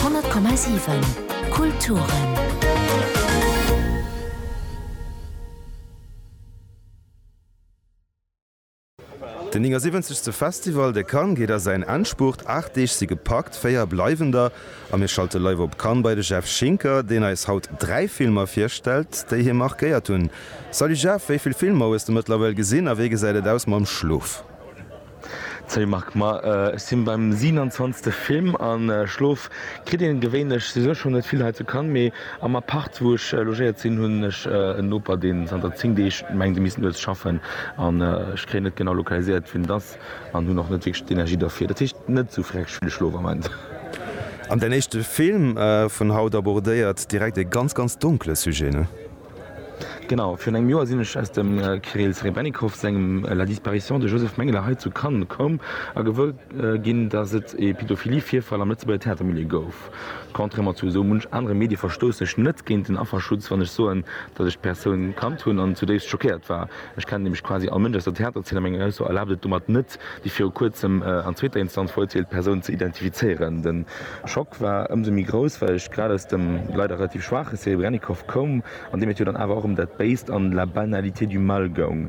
100,7 Kulturen Den 79. Festival de Cannes geet a säin Endspurt. Aacht Deeg si gepackt, véier bleiwen der. A mir schalte live op Cannes bei de Jeff Schinker, deen eis haut dräi Filmer virstellt, déi hie markéiert hunn. Salut Jeff, wéi vill Filmer hues de mëttlerweil gesinn a wéi gesäit et aus mam Schlof? Salut Marc, ma ech sinn beim 27 Film an Schlof kritt een gewéinlech souwisou schon net vill hei zu Cannes, mee am Appart wou ech logéiert sinn hunn ech en Noper deen zanter 10 Deeg mengt e misst nuets schaffen an ech kréien net genau lokaliséiert wien et ass an hunn och net wierklech d'Energie derfir. Dat heescht net esou freckeg vill Schlof am Moment. An däin éischte Film vun haut abordéiert direkt e ganz ganz donkele Sujet, ne? Genau, virun engem Joer sinn ech aus dem Kirill Serebrennikov sengem La disparition de Joseph Mengele hei zu Cannes komm a gewuer ginn, datt et ee Pädophilie-Virfall am Lëtzebuerger Theatermilieu gouf. Contrairement zu esou munch anere Medie verstoussen ech net géint den Afferschutz, wann ech soen, datt ech d'Persoun kannt hunn an zudéifst schockéiert war. Ech kennen nämlech quasi all Mënsch aus der Theaterzeen a meng Ausso erlaabt et domat net, Geriicht, déi viru kuerzem an zweeter Instanz verurteelt Persoun ze identifizéieren. De Schock war ëmsou méi grouss, well ech grad aus dem leider relativ schwaache Serebrennikov koum, an deem et jo dann awer och ëm dat Béist an la banalité du mal goung.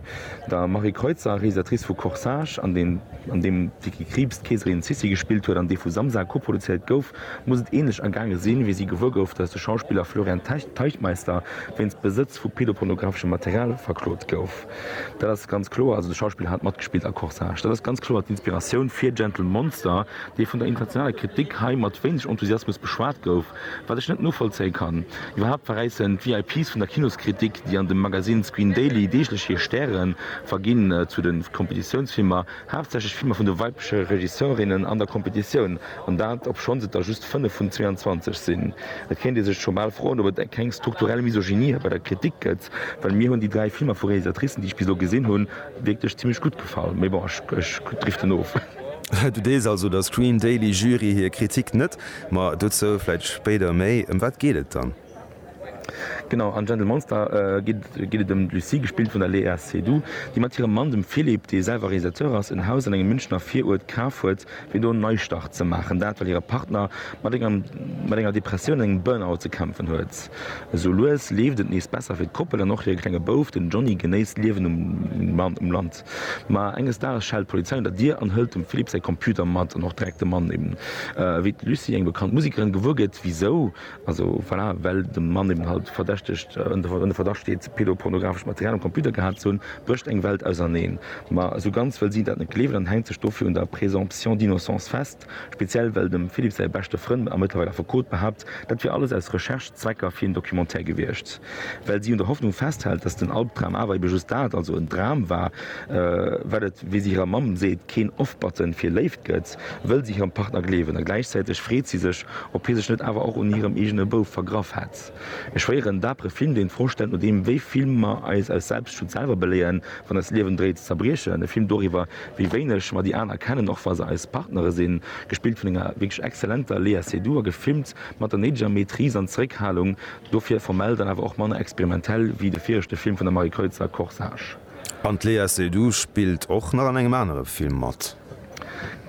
Der Marie Kreutzer, Realisatrice vu Corsage, an deem d'Vicky Krieps d'Keeserin Sissi gespillt huet an dee vu Samsa koproduzéiert gouf, muss et änlech ergaange sinn, wéi si gewuer gouf, datt de Schauspiller Florian Teichtmeister wéinst Besëtz vu pedopornographeschem Material verklot gouf. Dat ass ganz kloer, also de Schauspiller hat matgespillt a Corsage. Dat ass ganz kloer d'Inspiratioun fir Gentle Monster, dee vun der internationaler Kritik hei mat wéineg Enthusiasmus beschwat gouf, wat ech net novollzéie kann. Iwwerhaapt verräissen d'VIPs vun der Kinoskritik, déi an dem Magazine Screen Daily deeglech hir Stäre verginn zu de Kompetitiounsfilmer, Haaptsächlech Filmer vun de weibleche Regisseurinnen an der Competitioun, an dat obschonns et der just 5 vun 22 sinn. Et kéint ee sech scho bal froen, ob et keng strukturell Misogynie bei der Kritik gëtt, well mir hunn déi dräi Filmer vu Realisatricen, déi ech bis elo gesinn hunn, wierklech zimlech gutt gefall. Mee bon, ech driften of. Du deels also der Screen Daily Jury hir Kritik net, ma dozou vläit spéider méi. Ëm wat geet et dann? Genau, an Gentle Monster geet et ëm d'Lucie, gespillt vun der Léa Seydoux, déi mat hirem Mann, dem Philippe, dee selwer Realisateur ass, en Haus an engem Münchener Viruert kaf huet, fir do en Neistart ze maachen. Dat, well hire Partner mat enger Depressioun an engem Burnout ze kämpfen huet. Esou lues leeft et nees besser fir d'Koppel an och hire klenge Bouf, den Johnny, genéisst d'Liewen um Land. Ma enges Dages schellt d'Polizei un der Dier an hëlt dem Philippe säi Computer mat an och direkt de Mann. Wéi d'Lucie eng bekannt Musekerin gewuer gëtt, wisou? Also voilà, well de Mann eben halt verdächtegt, ënner Verdacht steet, pedopornografescht Material um Computer gehat ze hunn, brécht eng Welt auserneen. Ma esou ganz wëll si dat net gleewen an hänkt sech dofir un der Présomption d'innocence fest, speziell well dem Philippe säi beschte Frënn a mëttlerweil Affekot behaapt, dat wier alles aus Recherche-Zwecker fir een Documentaire gewiescht. Well si un der Hoffnung festhält, datt den Albdram awer ebe just dat, also en Dram war, wat et, wéi si hirer Mamm seet, keen Off-Button fir Léift gëtt. wëll si hirem Partner gleewen, a gläichzäiteg freet si sech, ob hie sech net awer och un hirem eegene Bouf vergraff hätt. E schwéieren, dapere Film, deen d'Fro stellt, nodeem wéi vill mer eis aus Selbstschutz selwer beléieren, wann eist Liewen dréit ze zerbriechen. E Film doriwwer, wéi wéineg mer déi aner kennen, och wa se eis Partnere sinn. Gespillt vun enger wierklech exzellenter Léa Seydoux a gefilmt mat der néideger Maîtrise an Zeréckhalung, dofir formell dann awer och manner experimentell wéi de viregte Film vun der Marie Kreutzer, Corsage. An d'Léa Seydoux spillt och nach an engem anere Film mat.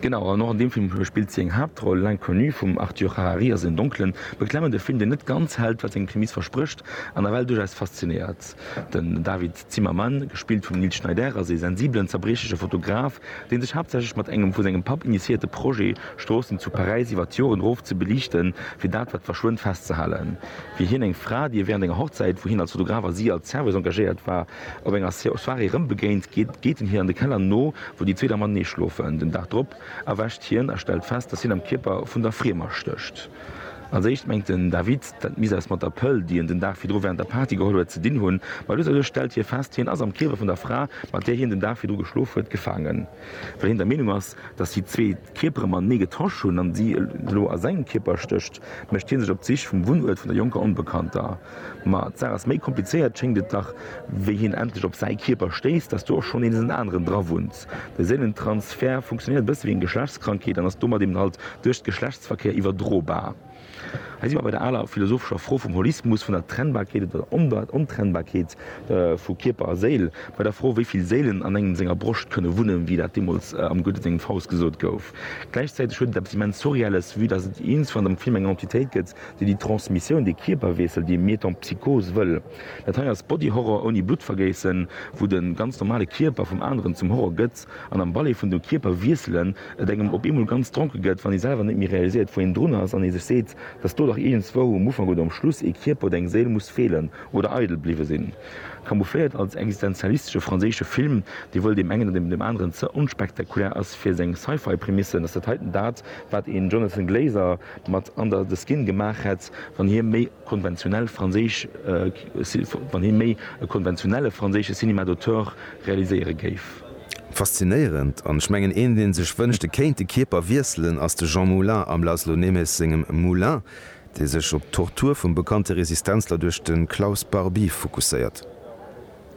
Genau, an och an deem Film spillt si eng Haaptroll. L'Inconnu vum Arthur Harari ass en donklen, beklemmende Film, deen net ganz hält, wat seng Prämiss versprécht, an nawell duerchaus faszinéiert. Den David Zimmerman, gespillt vum Nils Schneider, ass ee sensibelen, zerbriechleche Fotograf, dee sech haaptsächlech mat engem vu sengem Papp initiéierte Projet, Stroossen zu Paräis iwwer d'Joren eroof ze beliichten, fir dat, wat verschwënnt, festzehalen. Wéi hien eng Fra, déi e wärend enger Hochzäit, wou hien als Fotograf a si als Serveuse engagéiert war, Op enger Soirée rëm begéint, geet en hir an de Keller no, wou déi zwee da matenee schlofen. Den Dag drop erwächt hien a stellt fest, datt hien am Kierper vun der Friemer stécht. Als éischt mengt den David, dat misst eppes mat der Pëll, déi en den Dag virdru wärend der Party geholl huet, ze dinn hunn. Ma lues a lues stellt hie fest, hien ass am Kierper vun der Fra, mat där hien den Dag virdru geschlof huet, gefaangen. Well hien der Meenung ass, datt déi zwee d'Kierpere matenee getauscht hunn an si elo a sengem Kierper stécht, mécht hie sech op d'Sich vum Wunnuert vun der jonker Onbekannter. Ma d'Saach ass méi komplizéiert, schéngt et dach, wéi hien endlech op säi Kierper stéisst, dass do och schonn nees en aneren dra wunnt. De Séilentransfert funktionéiert e bësse wéi eng Geschlechtskrankheet an ass domat eben halt duerch Geschlechtsverkéier iwwerdrobar. Hei si mer bei der aler philosophescher Fro vum Holismus, vun der Trennbarkeet oder der Ontrennbarkeet vu Kierper a Séil, bei der Fro, wéi vill Séilen an engem senger Broscht kënne wunnen, wéi dat deemools am Goethe sengem Faust gesot gouf. Gläichzäiteg huet et eppes immens Surreelles, vue dass et iergendwann am Film eng Entitéit gëtt, Déi déi Transmissioun, dee Kierperweessel, dee Metempsychose wëll. Dat hei ass Body Horror ouni Bluttvergéissen, wou de ganz normale Kierper vum aneren zum Horror gëtt an am Ballet vun de Kierperwiesselen et engem op eemol ganz dronke gëtt, wann ee selwer net méi realiséiert, wou een drun ass an ee sech seet, dass do dach iergendswou um Ufank oder um Schluss ee Kierper oder eng Séil muss feelen oder eidel bliwwe sinn. Camoufléiert als existenzialistesche franséische Film, dee wëll deem engen oder deem aneren ze onspektakulär ass fir seng Sci-Fi-Prämissen, ass dat heiten dat, wat een Jonathan Glazer, mat an der The Skin gemaach hätt, wann hie méi konventionell franséisch, wann hie méi e konventionelle franséische Cinéma d'auteur realiséiere géif. Faszinéierend, an ech mengen een deen sech wënscht e kéint de Kierper wiesselen ass de Jean Moulin am László Németh sengem Moulin, dee sech op d'Tortur vum bekannte Resistenzler duerch de Klaus Barbie fokusséiert.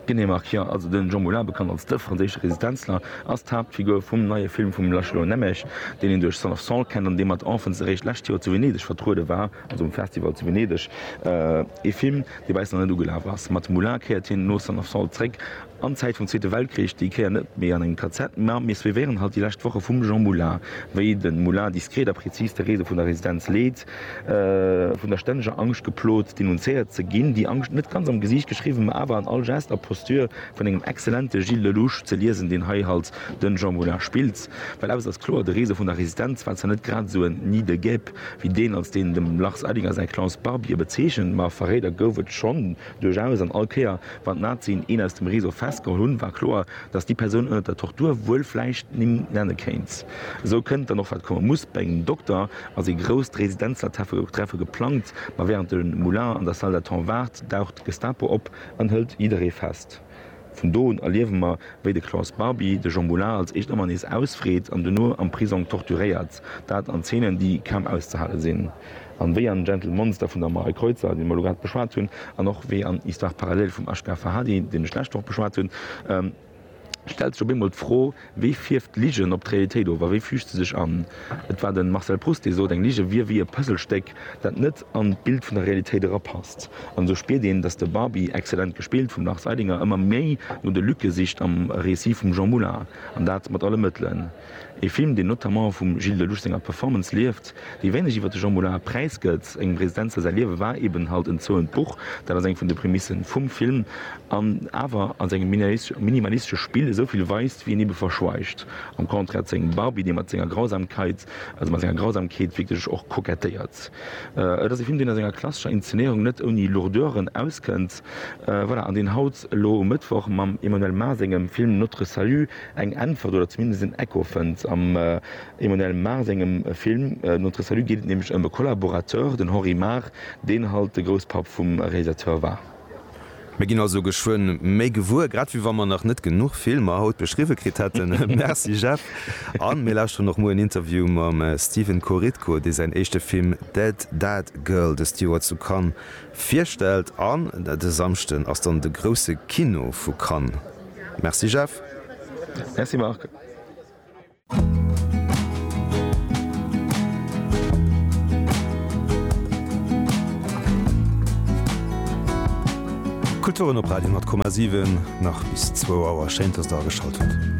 Genee, Marc, jo. Also den Jean Moulin, bekannt als de franséische Resistenzler, ass d'Haaptfigur vum neie Film vum Laszlo Nemes, deen een duerch Son of Saul kennt an dee mat Enfants eréischt d'lescht Joer zu Venedeg vertruede war, also um Festival zu Venedeg. Ee Film, dee bei eis nach net ugelaf ass. Mat Moulin kéiert hien no Son of Saul zréck an d'Zäit vum Zweete Weltkrich, déi Kéier net méi an engem KZ, mä mir suivéieren halt déi lescht Woche vum Jean Moulin, wéi de Moulin diskret a prezis d'Erese vun der Residenz leet, Vun der stänneger Angscht geplot, denunzéiert ze ginn. Déi Angscht, net ganz am Gesiicht geschriwwen, ma awer an all Geste a Posture vun engem exzellente Gilles Lellouche ze liesen, deen hei halt den Jean Moulin spillt. Well eppes ass kloer, de Rezo vun der Resistenz war zwar net grad esou en Nid de guêpes, wéi deen, als deen de Lars Eidinger säi Klaus Barbier bezeechent, ma Verréider gouf et schonn duerchaus, an all Kéier, wann d'Nazien een aus dem Rezo festgeholl hunn, war kloer, datt déi Persoun ënnert der Tortur wuel vläicht d'Nimm nenne kéint. Esou kënnt dann och, wat komme muss, bei engem Dokter, ass ee grousst Residenzlertreffe geplangt, ma wärend de Moulin an der Salle d'attente waart, daucht d'Gestapo op an hëlt jidderee fest. Vun do un erliewe mer, wéi de Klaus Barbie de Jean Moulin als éischt ëmmer nees ausfreet an duerno am Prisong torturéiert, dat an Zeenen, déi kaum auszehale sinn, an wéi an Gentle Monster vun der Marie Kreutzer, déi mer elo grad beschwat hunn, an och wéi an Histoire parallèle vum Ashgar Farhadi, deen ech d'lescht Woch beschwat hunn, Stellt sech op eemol d'Fro, Wéi fierft Ligen op d'Realitéit of a wéi füügt se sech an? Et war de Marcel Proust, dee sot, eng Lige wier wéi e Puzzlestéck, dat net an d'Bild vun der Realitéit erapasst. An esou spiert een, datt de Barbi, exzellent gespillt vum Lars Eidinger, ëmmer méi no de Lücke sicht am Récit vum Jean Moulin, an dat mat alle Mëttelen. Ee Film, deen notamment vum Gilles Lellouche senger Performance lieft, déi wéineg iwwer de Jean Moulin präisgëtt. Engem Residenzer säi Liewe war eben halt en zouent Buch, dat ass eng vun de Prämisse vum Film, an awer a sengem minimalistesche Spill esou vill weist, wéi en ebe verschweigt, am Contraire zu engem Barbie, dee mat senger Grausamkeit, also mat senger Grausamkeet wierklech och kokettéiert. Et ass e Film, deen a senger klassescher Inszenéierung net ouni Lourdeuren auskënnt, voilà, an deen haut elo um Mëttwoch mam Emmanuelle Mars sengem Film Notre Salut, eng Äntwert oder zumindest en Echo fënnt. Am Emmanuel Mar sengem Film Notre Salut geet et nämlech ëm e Collaborateur, den Henri Mar, deen halt de Grousspapp vum Realisateur war. Mir ginn also geschwënn méi gewuer, grad wéi wa mer nach net genuch Filmer haut beschriwwe kritt hätten. Merci Jeff. A mir lauschteren och muer en Interview mam Stephen Korytko, dee säin éischte Film Dead Dad Girl dëst Joer zu Cannes virstellt. An de Samschden ass dann de grousse Kino vu Cannes. Merci Jeff. Merci Marc. Kulturen op Radio 10,7 nach bis zwou Auer. Schéin dass der ageschalt hutt.